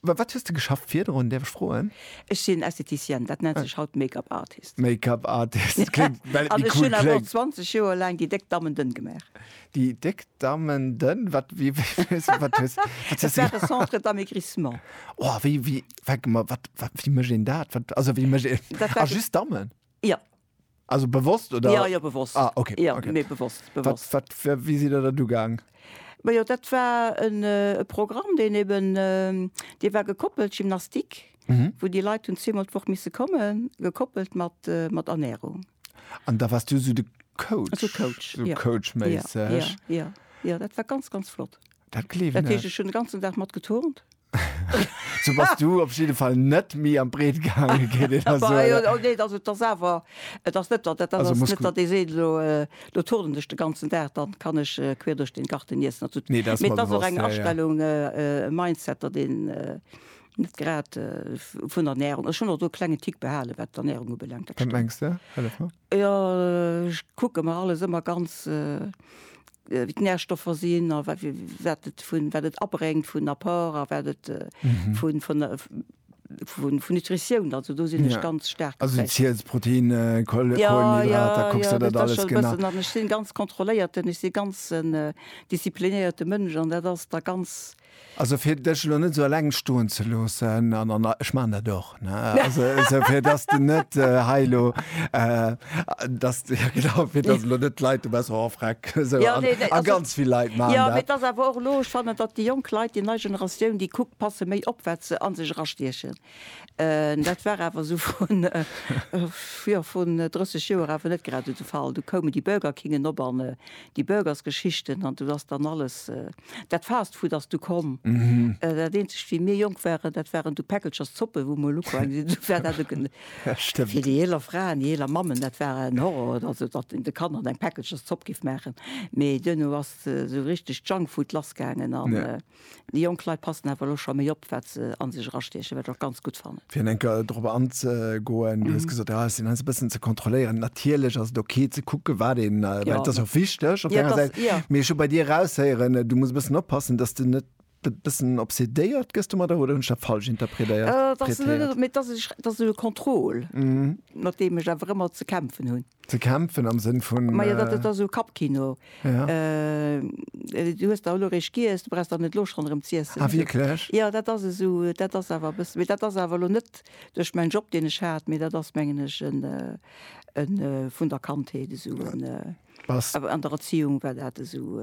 Wat hues de geschafft virdrun, däerf ech froen? Ech sinn Estheticienne, dat nennt sech haut Make-up Artist. Make-up Artist, kléngt, well et méi cool kléngt. An ech hunn awer och 20 Joer laang déi déck Dammen dënn gemaach. Déi déck Dammen dënn, wat, wéi, wéi, wat hues, wat hues de gemaach? Dat war e Centre d'Amaigrissement. Oh, wéi, wéi, wéi mécht een dat? Wat, also wéi mécht een, ah, just Dammen? Jo. Also bewosst oder? Ja, ja, bewosst. Ah, okay. Ja, okay. Nee, bewosst, bewosst. Wat, wat, wie si der dat ugang? Ma jo, dat war en äh, Programm, den eben, äh, Dir war gekoppelt, Gymnastik, mhm. wou Dir Leiit hunn zweemal d'Woch misse kommen, gekoppelt mat, äh, mat Ernährung. An da warst du so de Coach? So Coach, so ja. Coach ja, ja, ja, ja, dat war ganz, ganz flott. Dat kleef, ne? Dat heescht, ech hunn den ganzen Dag mat geturnt. So bass du op jidde Fall net méi am Breet gaange géint een a soen. Awer jo, nee, also et ass awer, et ass net, dat ass net, datt ee seet, elo elo turnen ech de ganzen Dag, dann kann ech queer duerch den Garten niessen a sou. Nee, dat ass mer bewosst, jo, jo. Mee et ass och eng Astellung, e Mindset, datt een net grad vun der Ernärung, ech hunn och do e klengen Tick behale wat d'Ernärung ubelaangt, dat stimmt. Wat mengs de? Hëllef mer. Jo, ech kucke mer alles ëmmer ganz, wéi d'Närstoffer sinn a wat et vun, wat et abréngt vun Apport a wat et vun, vun, vun Nutritioun. Also do sinn ech ganz staark geprägt. Also Ziels, Protéine, Kohlenhydrater, kucks der dat alles genau? Jo, jo, dat ass scho e bëssen. An ech sinn ganz kontrolléierten, ech sinn ganz en disziplinéierte Mënsch an dat ass da ganz. Also fir dech elo net sou eleng stoen ze loossen, an an ech maachen dat och, ne, also esou fir dass de net hei elo, dass de, jo genau, fir dass elo net d'Leit, du bass och ervreckt, esou, a ganz vill Leit maachen dat. Jo, mee et ass awer och elo, ech fannen, datt déi jonk Leit, déi nei Generatioun, déi kuckt, passe méi op wat se a sech erastiechen. Dat war awer esou vrun, jo, vrun 30 Joer awer net grad esou de Fall. Du koumen déi Burger Kingen op an déi Burgersgeschichten an do ass dann alles, dat Fast Food ass du komm. Dat eenzegt, wéi mir jonk waren, dat waren du Päckelchers Zoppen, wou mol ukoum sinn, dat war dat eke, fir déi eeler Fraen, déi eeler Mammen, dat war en Horror, also datt een de Kanner eng Päckelchers Zopp géif maachen. Mee duerno ass esou richteg Junk Food lassgaangen an. Déi jonk Leit passen awer elo scho méi op, wat se a sech erastiechen, wat ech och ganz gutt fannen. Fir eng Kéier dorop anzegoen, Du hues gesot, jo, et sinn alles e bëssen ze kontrolléieren. Natierlech ass et ok ze kucken, wat een, well et ass och wichteg op där enger Säit. Mee ech hu bei dir eraushéieren, du muss e bëssen oppassen, datt s de net e bëssen obsedéiert gëss domadder. Oder hunn ech dat falsch interpredéiert? Et ass net, mee et ass e, et ass e Contrôle, mat deem ech awer ëmmer ze kämpfen hunn. Ze kämpfen am Sënn vun. Majo, dat ass esou Kappkino. Ja. Du hues der elo eréischt giess, du brauchs der net elo schonn erëm z'iessen. Ah, wierklech? Jo, dat ass esou, dat ass awer e bëssi, mee dat ass awer elo net duerch mäin Job, deen ech hat, mee dat ass, mengen ech, en, en vun der Kandheet esou en, Bass. An der Erziehung war dat esou.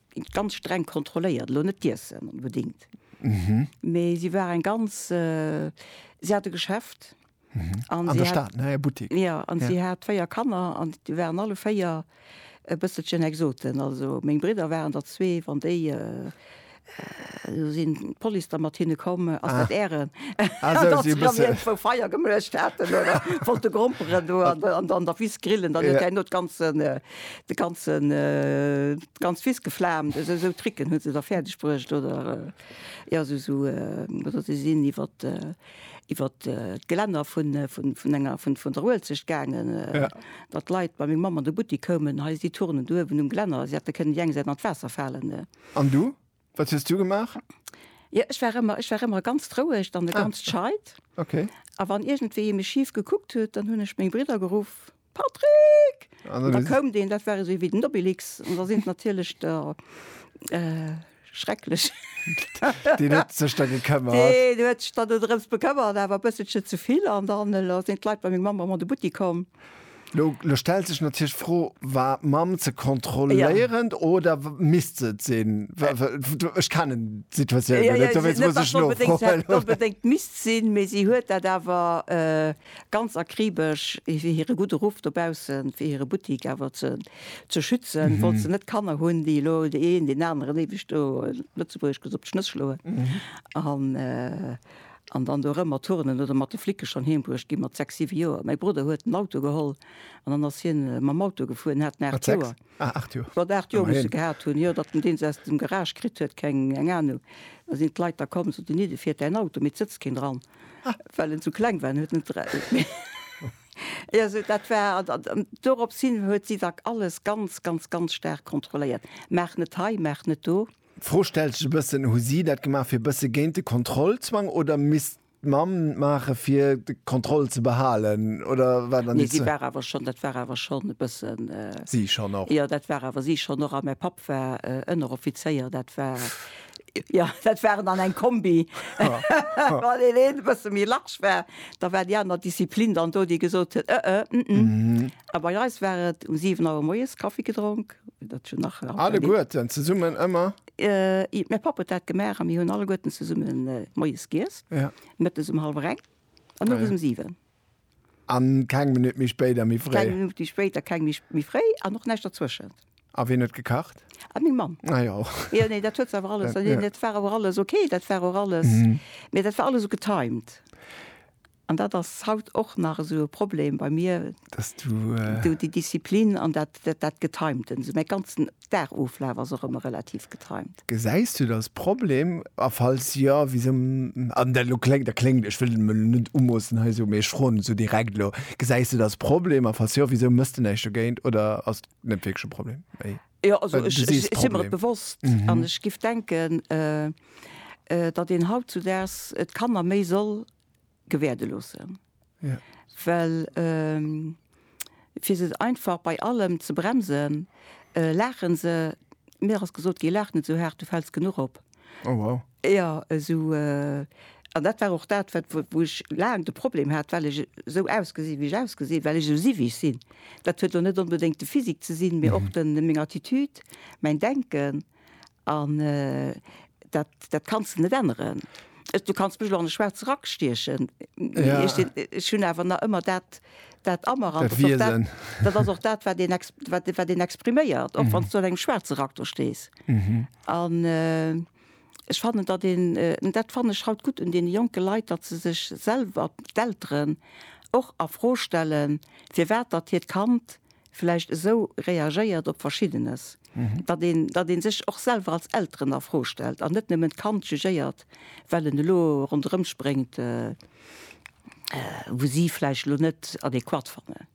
ganz streng kontrolléiert, elo net d'Iessen onbedingt, mee si war eng ganz, si hat e Geschäft an si hat, jo, an si hat véier Kanner an déi waren alle véier e bësselchen Exoten. Also meng Bridder waren der zwee, wann déi, elo sinn d'Police da mat hinne komm, ass dat Ären, datt si dann iergendwou Feier gemuecht haten oder wollte gromperen do an der Wiss grillen, dann huet hien elo d'ganzen De ganzen, d'ganz Wiss geflaamt, esou, esou Tricken huet se da fäerdeg bruecht, oder, jo, esou, esou, oder si sinn iwwer, iwwer d'Gelänner vun, vun, vun enger, vun, vun der Uelzecht gaangen, datt d'Leit bei meng Mamm an de Buttik koumen, hei si d'Turnen do uewen um Gelänner, si hätte kënnen déi eng Säit an d'Waasser falen. An du? Wat hues du gemaach? Jo, ech war ëmmer, ech war ëmmer ganz roueg an e ganz scheit. Okay. A wann iergendwéi ee mech schif gekuckt huet, dann hunn ech meng Bridder geruff, Patrick! An dann hues. Da koum deen, dat war esou ewéi den Obelix. An da sinn d'natierlech der schrecklech. Deen huet sech da gekëmmert. Deen huet sech dann dorëms bekëmmert, awer e bësselche ze vill. An dann elo sinn d'Leit bei meng Mamm ëmmer an de Buttik komm. Lo stellt sech natierlech d'Fro, War d'Mamm ze kontrolléierend oder misst se et sinn? Ech kennen d'Situatioun jo net, dowéinst muss ech nofroen. Net onbedéngt misst sinn, mee si huet dat awer ganz akribesch, fir hire gudde Ruff dobaussen, fir hire Buttik awer ze schützen, wollt se net Kanner hunn, déi elo dee een deen aneren éiweg do, Lëtzebuergesch gesot, d'Schnëss schloen. An dann do erëm mat Turnen oder mat de Flicke schonn heem bruecht gi mat sechs, siwe Joer. Mäi Brudder huet en Auto geholl an dann ass hien mam Auto gefuer. En hat en aacht Joer. Wat aacht Joer muss e gehat hunn, jo, datt en deen se aus dem Garage kritt huet, keng eng Anung. Da sinn d'Leit da komm, sot en, nidde fiert däin Auto, mee et sëtzt keen dran, well en esou kleng war. En huet net erauer. Jo, sou dat war. An dorops hin huet si da alles ganz, ganz, ganz staark kontrolléiert. Maach net hei, maach net do. D'Fro stellt sech e bëssen, Hu si dat gemaach fir e bësse géint de Kontrollzwang oder misst d'Mamm et maache fir d'Kontroll ze behalen oder wat an Nee, déi si zwee. war awer schonn, dat war awer schonn e bëssen, Si schonn och. jo, dat war awer si schonn och a mäi Papp war Ënneroffizéier, dat war, jo, dat waren dann eng Kombi. Wann deen een e bësse méi large war, da war déi aner Disziplin dann do, déi gesot huet, ëë, ëmëë. A bei eis war et um siwen Auer moies Kaffi gedronk. Alleguerten zesummen ëmmer? Mäi Papp huet dat gemaach a mir hunn alleguerten zesumme moies giess, mëttes um hallwer eng an owes um siwen. A keng Minutt méi spéit a méi fréi? Keng Minutt méi spéit a keng Minutt méi fréi an och näischt dertwëschent. A wien huet gekacht? Meng Mamm. Ah jo. Jo, nee, dat huet se awer alles, dat war awer alles ok, dat war och alles, mee dat war alles sou getimed. An dat ass haut och nach esou e Problem bei mir, esou déi Disziplin an dat, dat Getimten. Esou mäi ganzen Dagoflaf ass och ëmmer relativ getimt. Gesäis du da e Problem? A falls jo, wisou? An dat elo kléngt, dat kléngt, ech wëll et mer elo net umoossen hei esou, mee ech froen esou direkt elo, gesäis du da e Problem? A falls jo, wisou méchs du näischt dogéint? Oder ass et net wierklech e Problem? Mee jo, also ech si mer et bewosst an ech géif denken, datt een hautzudaags d'Kanner méi soll gewäerde loossen. Ja. Well ähm, fir se einfach bei allem ze bremsen, äh, lachen se mir ass gesot gi lach net so hart, du fällst genug op. Oh, wow. Ja eso äh, an dat war och dat wat wo wo ech laang de Problem hat, well ech sou ausgesi wéi ech ausgesi, well ech sou si wéi ech sinn. Dat huet lo net onbedéngt de Physique ze sinn, mee och den meng Attitude, mäin Denken. An dat, dat kanns de net änneren. Du kanns mech elo an de schwaarze Rack stiechen, ech hunn awer nach ëmmer dat, dat a mer. An dat Wiesen. Dat ass och dat, wat een, wat, wat een expriméiert, och wann s du an engem schwaarze Rack do stees. An ech fannen, datt een, an dat fannen ech haut gutt un deene jonke Leit, datt se sech selwer, d'Elteren, och a Fro stellen, firwat datt hiert Kand vläicht esou reagéiert op Verschiddenes, datt een, datt ee sech och selwer als Elteren a Fro stellt an net nëmmen d'Kand jugéiert, well en elo ronderëmspréngt, wou si vläicht elo net adäquat fannen.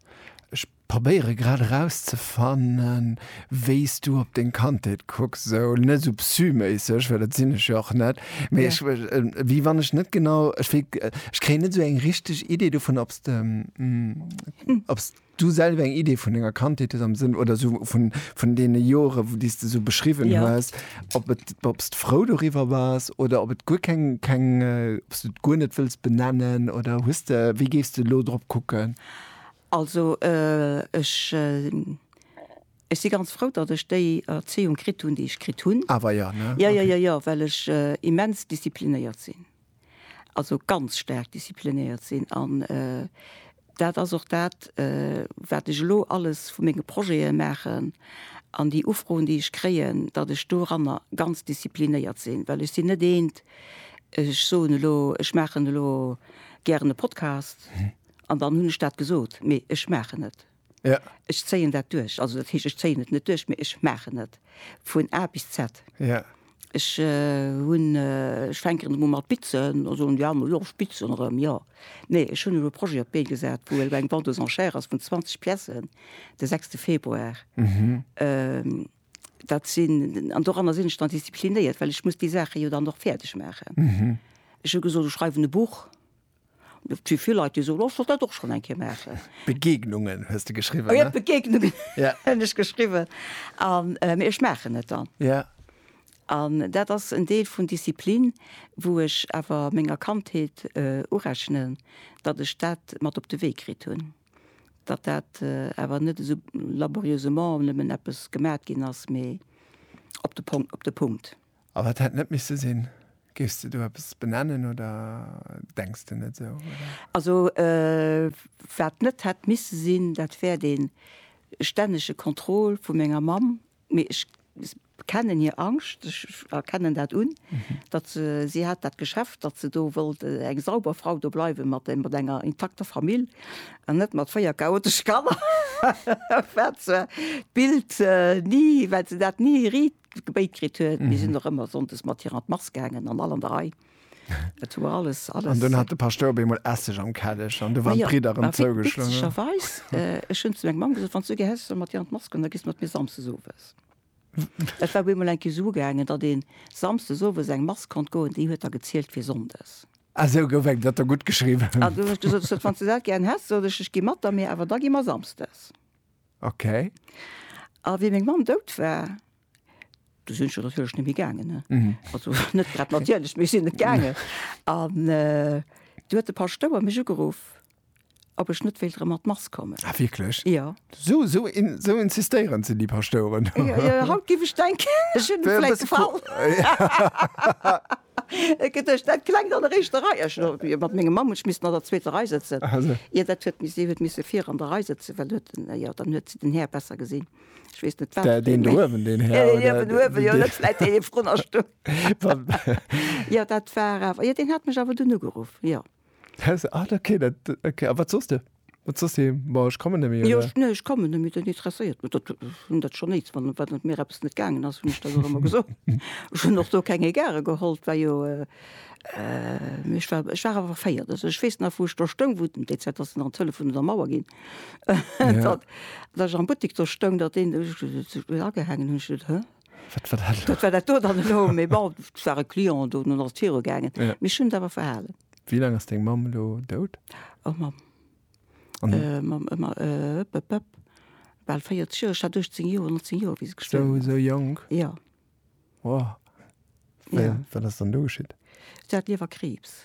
Ech probéiere grad erauszefannen, wéi s du op deng Kandheet kucks, esou net esou psy-méisseg, well dat sinn ech jo och net, mee ech, wéi wann ech net genau, ech wéi, ech kréien net esou eng richteg Idee dovun, ob s de, ob s. Du selwer eng Idee vun denger Kandheet hues am Sënn, oder esou vun, vun deene Jore wou, déi s de esou beschriwwen Ja. hues, ob et, ob s de frou doriwwer bass, oder ob et guer keng, keng, ob s du et guer net wëlls benennen, oder hues de, wéi géifs de elo drop kucken? Also ech, ech si ganz frou, datt ech déi Erzéiung kritt hunn, déi ech kritt hunn. Awer, jo, ne? Jo, jo, jo, jo, well ech immens disziplinéiert sinn. also ganz staark disziplinéiert sinn. An dat ass och dat, wat ech elo alles vu menge Projete maachen an déi Ufroen, déi ech kréien, datt ech doranner ganz disziplinéiert sinn. Well ech sinn net eent, ech soen elo, ech maachen elo gären e Podcast an dann hunn ech dat gesot. Mee ech maachen et. Ja. Ech zéien dat duerch. Also dat heescht, ech zéien et net duerch, mee ech maachen et vun A bis Z. Ja. Ech hunn, ech fänken erëm u mat bitzen, da soen déi aner, jo ech bitzen erëm, jo. Nee, ech hunn elo e Projet op d'Bee gesat, wou elo eng Vente aux enchères ass vun 20 Piècen de sechste Februar. Dat sinn, an doranner sinn ech dann disziplinéiert, well ech muss déi Saache jo dann och fäerdeg maachen. Ech hu gesot, ech schreiwen e Buch. Et si vill Leit, déi soen, ech wollt dat och schonn eng Kéier maachen. Begegnungen hues de geschriwwen, ne? Jo, Begegnungen hunn ech geschriwwen. Mee ech maachen et dann. Ja. An dat ass en Deel vun Disziplin, wou ech awer menger Kandheet urechnen, datt ech dat mat op de Wee kritt hunn. Datt dat awer net esou laborieusement nëmmen eppes gemat ginn ass, mee op de Pong, op de Punkt. A wat hätt net misse sinn? Géifs de do eppes benennen oder denks de net esou, oder? Also wat net hätt misse sinn, dat wär dee stännege Contrôle vu menger Mamm. Mee ech kennen hir Angscht, ech erkennen dat un, datt se, si hat dat Geschäft, datt se do wollt eng sauber Frau do bleiwen, mat enger intakter Famill an net mat véier chaotesche Kanner. Wat zwar d'Bild ni, wat se dat ni Gebéit kritt huet. Mir sinn och ëmmer sonndes mat hir an d'Mass gaangen an all an der Rei. Et war alles, alles. An dunn hat de Paschtouer op eemol Esseg am Kelleg an du waren d'Bridder erëm zougeschloen. Ma jo, witzegerweis, ech hunn zu menger Mamm gesot, wann s du gär häss, ech soll mat dir an d'Mass goen, da giss mat mir samsdes owes. Et war op eemol eng Kéier esou gaangen, datt ee samsdes owes an eng Mass konnt goen, déi huet da gezielt fir sonndes. A sou gouf eng Blatt da guttgeschriwwen. An dunn hunn ech gesot, ech sot, wann s du dat gären häss, sot ech, ech gi mat der, mee awer da gi mer samsdes. Ok. A wéi meng Mamm dout war, du sinn ech natierlech net méi gaangen. Also net grad natierlech, mee ech sinn net gaangen. An du huet de Paschtouer mech ugeruff, ob ech net wéilt erëm an d'Mass kommen. Ah wierklech? Jo. Sou insistéierend sinn déi Paschtoueren. Jo, jo, haut géif ech denken, ech hunn em vläit gefall. Et gëtt duerch dat klengt an der éischter Rei. Ech elo jo mat mengem Mann, ech misst an der zweeter Rei sëtzen. Ier dat huet mis, si huet misse vir an der Rei sëtzen, well huet en, jo, dann huet si den Här besser gesinn. Ech weess net, wat. Dä, deen do uewen, deen Här oder. Deen uewen, uewen, jo, net vläit dee vrun der Stuff. Jo, dat war awer, jo, deen hat mech awer dunn ugeruff, jo. Ah, okay, dat, okay. A wat soss de? Wat soss de? Bon, ech kommen net méi, oder? Jo, ech, nee, ech kommen net méi, dat interesséiert mech, dat, hunn dat schonn eens, wann, wann et mir eppes net gaangen ass, hunn ech dat och ëmmer gesot. Ech hunn och do keng Egarë geholl, 't war jo, mee ech war, ech war awer verféiert. Also ech weess nach, wou ech do stoung, wou den, déi Zäit ass et nach an d'Hëllef vun der Mauer ginn, datt ech am Buttek do stoung, datt een, ech hunn dat agehaangen, hunn ech gesot, Hä? Wat war dat elo? Wat war dat do dann elo? Mee bon, et war e Client do, dunn ass et virugaangen. Ja. Mee ech hunn et awer verhalen. Wéi laang ass deng Mamm elo dout? Oh Mamm. An. Äh, Mamm, ë, ma, ë, ëp, ëp, ëp, bal 40 Joer. Ech hat 18 Joer, 19 Joer, wéi se gestuerwen Esou, ass. esou jonk? Ja. Wow. Wéi, Ja. wat ass dann do geschitt? Si hat Liewerkriibs.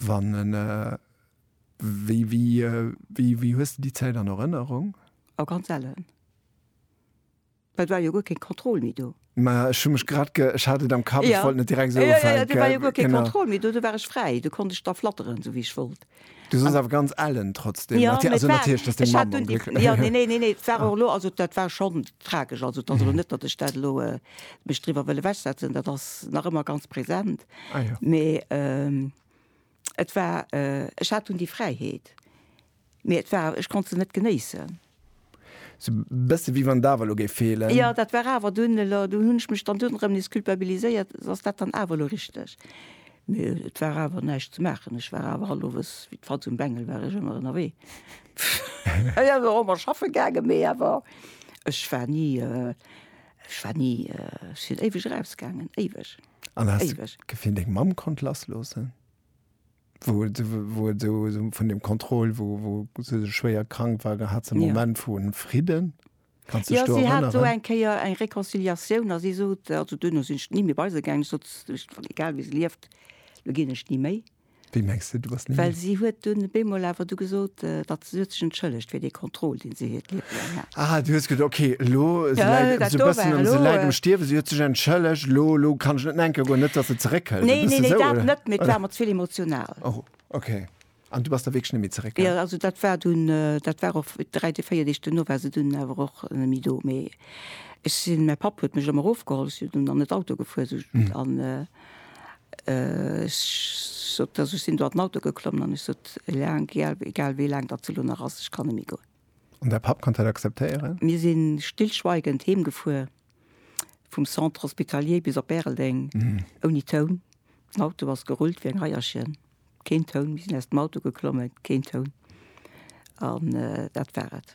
Wann en, wéi, wéi, wéi hues de déi Zäit an Erënnerung? A ganz sellen. Well et war jo guer keng Kontroll méi do. Mä ech hu mech grad ge, ech hat et am Kapp, ech wollt net direkt esou ufänken. Jo, jo, jo, do war jo guer keng Kontroll méi do, do war ech fräi, do konnt ech da flatteren, esou wéi ech wollt. Du soss awer ganz ellen trotzdeem, natierlech, also natierlech, dass deng Mamm onglécklech war. Jo, neen, neen, neen, et war och elo, also dat war schonn tragesch, also et ass elo net, datt ech dat elo mech driwwer wëll ewechsetzen, dat ass nach ëmmer ganz präsent. Ah, ja. Mais ähm, et war, äh, ech hat dunn déi Fräiheet, mais et war, ech konnt se net genéissen. Sou bësse wéi wann d'Awer elo géif feelen. Ja, dat war awer dunn elo, dunn hunn ech mech dann dunn erëm nees culpabiliséiert, ass dat dann awer elo richteg? Mais et war awer näischt ze maachen, ech war awer hallowes wéi d'Fatz um Bengel war ech ëmmer ënnerwee. Ech ass och ëmmer schaffe gaangen, mais awer ech war ni, äh, ech war ni, äh, ech sinn éiweg erausgaangen, éiweg. An hast Éiweg. du Gefill, deng Mamm konnt lassloossen? Wou, se- wou et so, so vun dem Kontroll, wou, wou se sou schwéier krank war, da hat se en Ja. Moment vu Fridden. Kanns du Ja, dech do si hat do erënneren? eng Kéier eng Reconciliatioun a si sot, also duerno sinn ech ni méi bei se gaangen, ech sot, s- Egal wéi se lieft, elo ginn ech ni méi. Wéi mengs de, du bass ni méi? Well si huet dunn op eemol awer du gesot, datt se huet sech entschëllegt fir dee Contrôle, dee se hiert Liewe laang hat. Ah, du hues gesot, okay, elo, se Ja, läit dat esou do bëssen war am, se elo. läit am Stierwen, si huet sech entschëllegt, elo, elo kann ech net nenke goen, net datt se zeréckhëlt. Nee, nee, nee, dat net, mee et war mer ze vill emotional. Oh, okay. An du bass da wierklech net méi zeréck? Jo, also dat war dunn, dat war och dräi Deeg, véier Deeg duerno war se dunn awer och net méi do. Mee ech sinn, mäi Papp huet mech ëmmer erofgeholl, ech sinn dunn an et Auto gefuer, esou, an, Ech sot, also ech sinn do an den Auto geklomm an ech sot, eleng, egal wéi laang datt se elo nach ass, ech kann net méi goen. An däi Papp konnt dat akzeptéieren? Mir si stillschweigend heemgefuer, vum Centre Hospitalier bis op Bäreldeng, ouni Toun. Den Auto ass gerullt wéi eng Eierchen, keen Toun. Mir sinn aus dem Auto geklommen, keen Toun. An dat war et.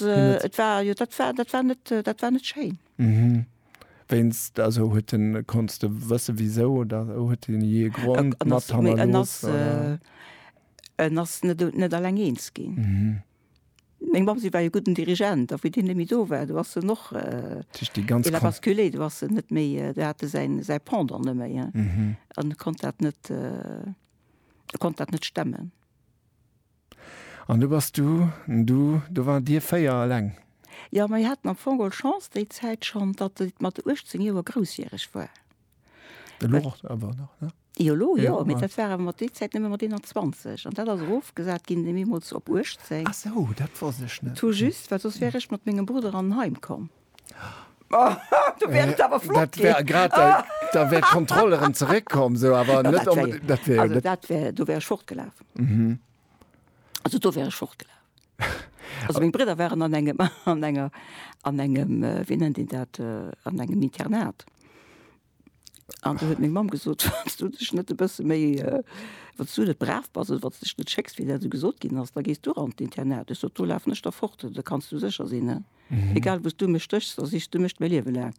Et war jo dat war dat war net dat war net schéin. Mhm. Wéinst also huet en konns de wësse wisou oder huet en jee e Grond En mat ass méi en hannerlooss ass oder? en ass net net alleng eens ginn. Mhm. Meng Mamm si war e gudden Dirigent a wéi deen net méi do war, do ass en och Dat heescht déi ganz il a Kon basculé, do ass en net méi do hat e säin säi Pendant net méi an e konnt dat net e konnt dat net stemmen. An du bass du, du, do wart dir véier eleng? Jo, mir haten am Fong geholl Chance déi Zäit schonn, datt et mat 18 Joer groussjäreg war. Elo och awer nach, ne? Jo, elo jo, mee dat war awer mat déi Zäit nëmme mat 21. An dat ass erofgesat ginn deemools op 18. Ah sou, dat wosst ech net. Tout juste, well soss wär ech mat mengem Brudder an en Heim komm. Du wär et awer flott ginn. Dat wär grad, da wär d'Kontroll erëm zeréck komm, sou, awer net onbedéngt. Dat wär jo net. Also, dat wär, do wär ech fortgelaf. Also, do wär ech fortgelaf. Also, meng Bridder waren an engem, an enger, an engem, wéi nennt een dat, an engem Internat. An du huet meng Mamm gesot, Wann s du dech net e bësse méi, wann s du net brav bass oder wann s dech net schécks, wéi dat esou gesot ginn ass, da gees du an d'Internat. Ech sot, Do lafen ech da fort, da kanns du sécher sinn. Egal wou s du mech stéchs, da sichs du mech mäi Liewe laang.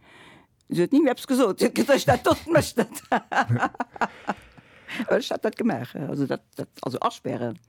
Si huet ni méi eppes gesot. Si huet gesot, Dat dotzt mech net. Ech hat dat gemaach, also dat, dat, also aspären.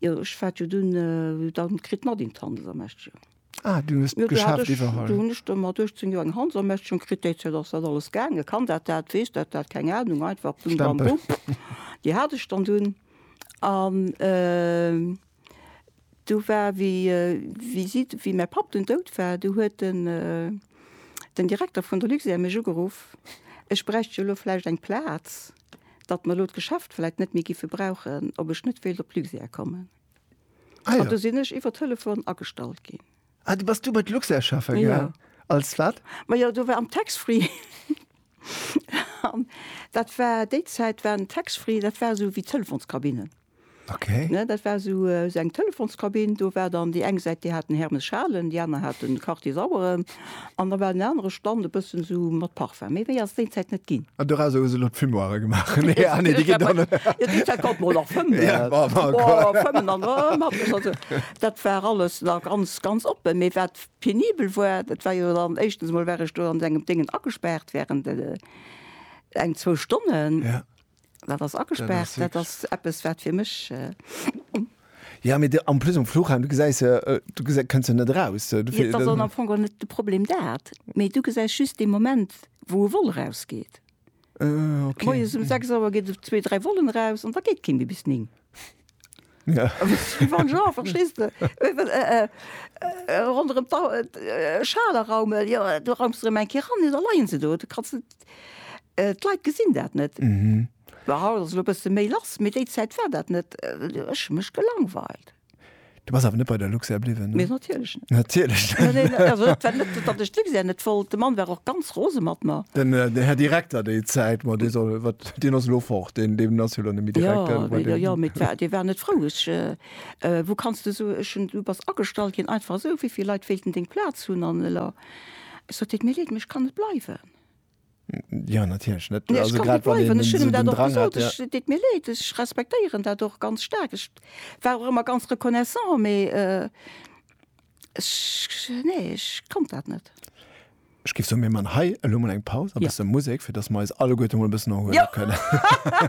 Jo ech war jo dunn dann kritt mat een d'Handelsermächtigung. Ah, du hues d'Geschäft iwwerholl. Dunn hunn ech do mat 18 Joer eng Handelsermächtigung kritt, déi Zäit ass dat alles gaangen, kann dat dat, weess dat dat, keng Ahnung, einfach bim bam bum. Déi hat ech dann dunn an du war wéi wéi si wéi mäi Papp dunn dout war, du huet den den Direkter vun der Luxair mech ugeruff, ech bräicht jo elo vläicht eng Plaz datt mer elo d'Geschäft vläit net méi géife brauchen, ob ech net wéilt op Luxair kommen. Ah, ja. An do sinn ech iwwer Telefon agestallt ginn. Ah, du bass du bei Luxair schaffen gaangen? Ja. Als wat? Ma jo, do war am Tax-Free. Dat war, déi Zäit war den Tax-Free, dat war esou wéi d'Telefonskabinen. Okay. Ne, dat war esou esou eng Telefonskabinn, do war dann déi eng Säit, déi hat den Hermes Schalen, déi aner hat den Quartier Saueren an da war den anere Stand e bëssen esou mat Parfum. Méi méi ass déi Zäit net ginn. An dorausser hu se elo d'Fumoire gemaach. Nee, ah nee, déi ginn dann. Jo, déi Zäit konnt mer och nach fëmmen. Ja, ma ma ma. Boah, fëmmen an erëm hat mech also, dat war alles nach ganz, ganz oppen. Mee wat penibel war, dat war jo dann, éischtens emol war ech do an engem Déngen agespaart während eng, zwou Stonnen. Ja. Dat ass agespaart, dat ass eppes wat fir mech. Ja mee am plus um Fluchheim du gesäis se du gesi kënns se net eraus. Dat ass am Fong och net de Problem dat, mee du gesäis just dee Moment wou e Vol erausgeet. Moies um 6 Auer geet zwee, dräi Vollen eraus an da geet kee méi bis 9. Ja. Wie wann Jean, verstees de? Äh, well, äh, äh, äh, ronderëm d'Au, äh, Schaler Raumel, jo, äh, do raumst de erëm eng Kéier ran, da leien se do, du kanns net, äh, d'Leit gesinn dat net. Mhm. Well haut ass elo e bësse méi lass, mee déi Zäit war dat net, äh, ech hu mech gelangweilt. Du bass awer net bei der Luxair bliwwen? Mee natierlech net. Natierlech net. Neen, neen, also dat war net, datt ech d'Luxair net wollt. De Mann war och ganz rose mat mer. Den, den Här Direkter déi Zäit, ma dee soll, wat, deen ass elo fort, deen, deen ass jo elo net méi Direkter. Jo, jo, jo, mee d'war, dee war net frou. Ech, wou kanns de esou, ech hunn, du bass agestallt ginn, einfach esou, wéi vill Leit wéilten deng Plaz hunn? An elo, ech sot, deet mir leed, mee ech kann net bleiwen. Ja natierlech net. Nee, ech kann net bleiwen. Ech hunn em dat och gesot. Ech, et deet mir Leed, ech respektéieren dat och ganz staark. Ech war och ëmmer ganz reconnaissant, mee ech, nee, ech konnt dat net. Ech géif soen, mir man hei elo mol eng Paus, e bësse Musek, fir dass mer eis alleguerte mol e bëssen erhuele kënnen.